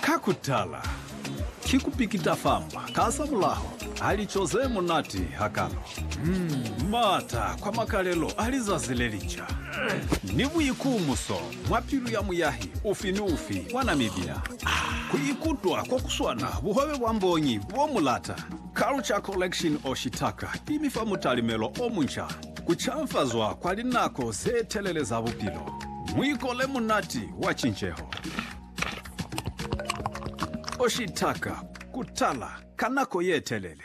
Ka kutala, ki ku pikita famba ka za mulaho ha lico ze munati hakalo, m'ata kwa makalelo a lizazi le linca, ni buikumuso mwa pilu ya muyahi ufi ni ufi wa Namibia ku ikutwa ko ku swana buhobe bwa mbonyi bo mu lata. Culture Collection Oshitaka i mi fa mutalimelo o munca. Ku canfazwa kwa linako ze telele za bupilo. Muiko le munati wa cinceho. O shitaka ku tala ka nako ye telele.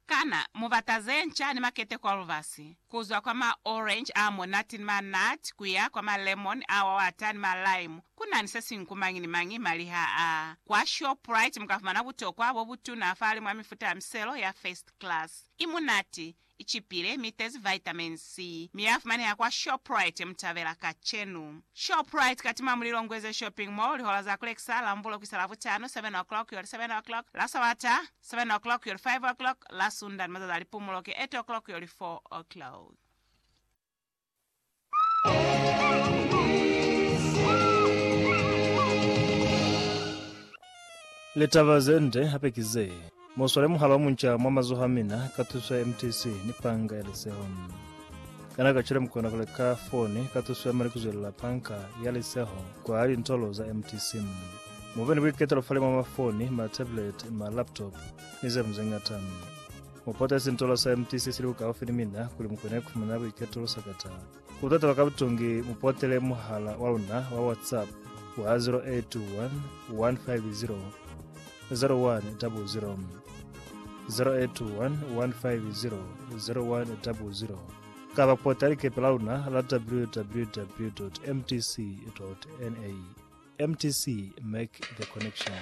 Kana mu bata ze nca ni makete kwa lubasi, ku zwa kwa ma orange a monate ni ma nut ku ya kwa ma lemon a wawata ni ma lime, ku na ni se siñwi ku mañi ni mañi mali ha a? Kwa Shoprite mu ka fumana butokwa bo butuna fa limwi a mifuta ya miselo ya first class. I munati, Icipile mi itezi vitamin C, mi yafumaneha kwa Shoprite Mutabela kacenu. Shoprite katima muli Longweze Shopping Mall lihola za kulekisa la Mvulo kuisa Lavutano, 7 o'clock yoli 7 o'clock, la Sabata, 7 o'clock yoli 5 o'clock, la Sunda ni mazazi a lipumulo ki 8 o'clock yoli 4 o'clock. Litaba ze nde hape ki ze, Muswale muhali wa munca mwa mazoho a mina ka tuso ya MTC ni panga ya liseho. Kana kacwale mukona ku leka foni ka tuso ya mali kuzwelela panga ya liseho kwa lintolo za MTC? Mube ni buiketelo fale mwa mafoni, ma tablet, ma laptop ni zeñwi zeñata. Mu potezi ntolo sa empty se sili bukaufi ni mina, kuli mu kone kufumana buiketulo sakata. Ku tatala ka butungi, mu potele muhala wa luna wa WhatsApp wa 0821 150 0100, 0821 150 0100, kaba pote likepe la luna la www.mtc.na. Mtc, Make the Connection.